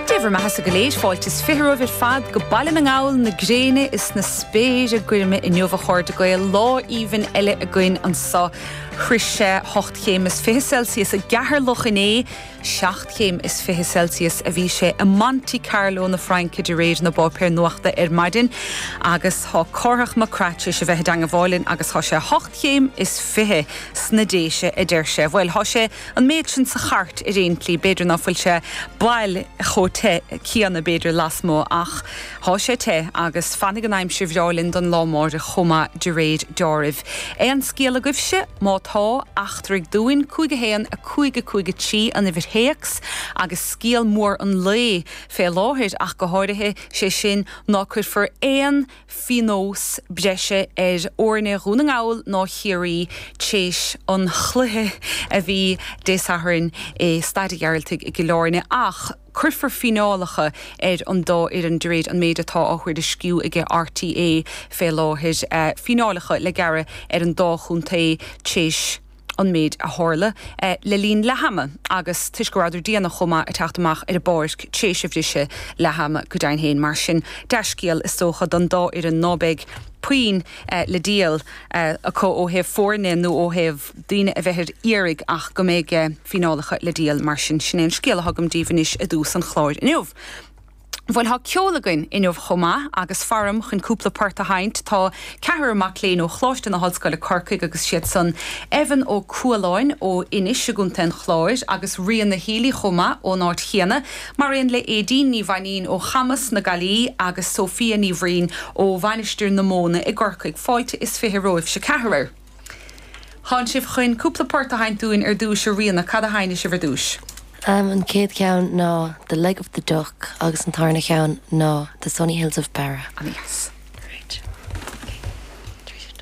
Dé bhur mbeathasa go léir, fáilte is fiche romhaibh ar fad go Baile na nGall, na gréine is na spéire goirme inniu a chairde Gael, lá aoibhinn eile againn anseo. Shroich sé hocht chéim is fiche Celsius i gCeatharlach inné, seacht chéim is fiche Celsius a bhí sé i Monte Carlo na Fraince de réir na bpáipéar nuachta ar maidin agus tá Cárthach Mac Craith tar éis a bheith i dteangmháil linn agus tá sé hocht chéim is fiche sna Déise a deir sé. Bhuel, tá sé an méid sin sa Chairt ar aon tslí. B'fhéidir ná fuil sé baileach chomh te céanna, b'fhéidir, lasmuigh, ach tá sé te agus fanfaidh an aimsir bhreá linn don lá amárach chomh maith de réir deáraimh. Aon scéal agaibhse? Má tá, eachtraigh dúinn, cúig a haon, a cúig, a cúig a trí an uimhir théacs agus scéal mór an lae, fé láthair ach go háirithe, sé sin, ná cuirfear aon phionós breise ar fhoirne Dhún na nGall ná Chiarraí tréis an chluiche a bhí Dé Sathairn i Staid a' Ghearaltaigh i gCill Áirne ach cuirfear fíneálacha ar an dá fhoireann de réir an méid atá á thuairisciú ag RTÉ fé láthair, fíneálacha le gearradh ar an dá chontae tréis. an méid a tharla le linn leathama agus toisc go rabhadar déanach chomh maith ag teacht amach ar an bpáirc tar éis a bhriseadh leathama, go deimhin féin. Mar sin, dea-scéal, is dócha, don dá fhoireann ná beidh puinn le díol acu ó thaobh foirne nó ó thaobh daoine a bheith ar iarraidh ach go mbeidh fíneálacha le díol. Mar sin, sin é an scéal a thugaim daoibh anois i dtús an chláir inniu. Bhuel tá ceol againn inniu chomh maith agus fáram chun cúpla port a sheinnt. Tá ceathrar mac léinn ó Choláiste na hOllscoile Corcaigh agus is iad san Evan Ó Cualáin ó Inis i gContae an Chláir agus Ríona Healy chomh maith ón áit chéanna mar aon le Éadaoin Ní Mhainín ó Chamus na Gaillimhe agus Sophia Ní Bhraoin ó Mhainistir na Móna i gCorcaigh. Fáilte is fiche romhaibhse ceathrar. Tánn sibh chun cúpla port a sheinnt dúinn ar dtúis, a Ríona, cad a sheinnfidh sibh ar dtúis? Am, an chéad cheann ná The Leg of the Duck agus an tarna cheann ná The Sunny Hills of Beara. Ana dheas. Great. Tríd is tríd.